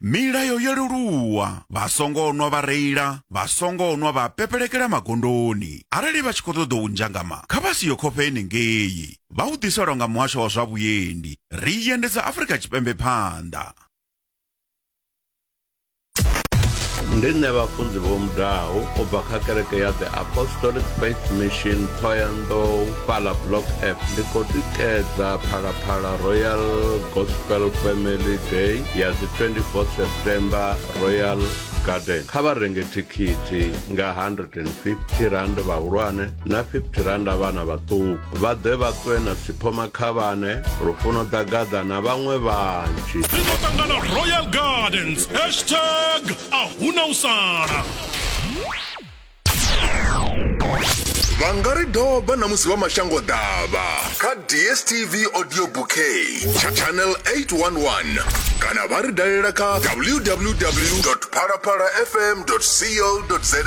Milayo yo leluwa, vha songo nwa vha reila, vha songo nwa vha pepelekela magondoni. Arali vha tshi khou ṱoḓa u ndzhangama, kha vha si yo khofhe henengei. Vha u ḓiselwa nga muhasho wa zwa vhuendi. Ri i endedza Afrika Tshipembe phanḓa. Ndi nṋe Vhafunzi Vho Mudau u bva kha kereke ya The Apostolic Faith Mission Thohoyandou fhaḽa Block F. Ndi khou tikedza Phalaphala Royal Gospel Family Day ya dzi 24 September Royal Garden kha vha renge thikhithi nga 150 rand vhahulwane na 50 rand vhana vhaṱuku vha ḓe vha ṱwe na siphoma khavhane lufuno ḓa gaḓa na vhaṅwe vhanzhi ri ḓo ṱangana royal gardens hashtag a huna u sala vha nga ri doba na musi vha mashango ḓavha kha dstv audio bouquet tsha channel 811 kana vha ri dalela kha www phalaphala fm co za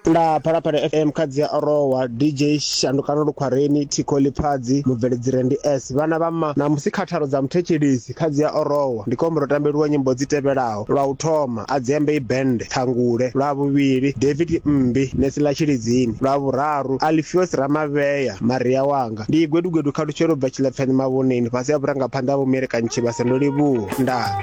nda phalaphala fm kha dzi a orowa dj shandukano lukhwareni thikho lipfadzi mubveledzire ndi s vhana vha ma na musi khatharo dza muthetshelesi Ṱhadzi ya Orowa, ndi kombela u tambeliwa nyimbo dzi tevhelaho, lwa u thoma, Adziambei Band, Ṱhangule, lwa vhuvhili, David Mmbi, Nesi ḽa Tshilidzini, lwa vhuraru, Alfios Ramavhea, Maria Wanga. Ndi Igwedugwedu Khalutshelo u bva Tshilepfeni Mavhoneni fhasi ha vhurangaphanḓa ha Vho Mielekanyi Tshivhase. Ndo livhuwa. Ndaa.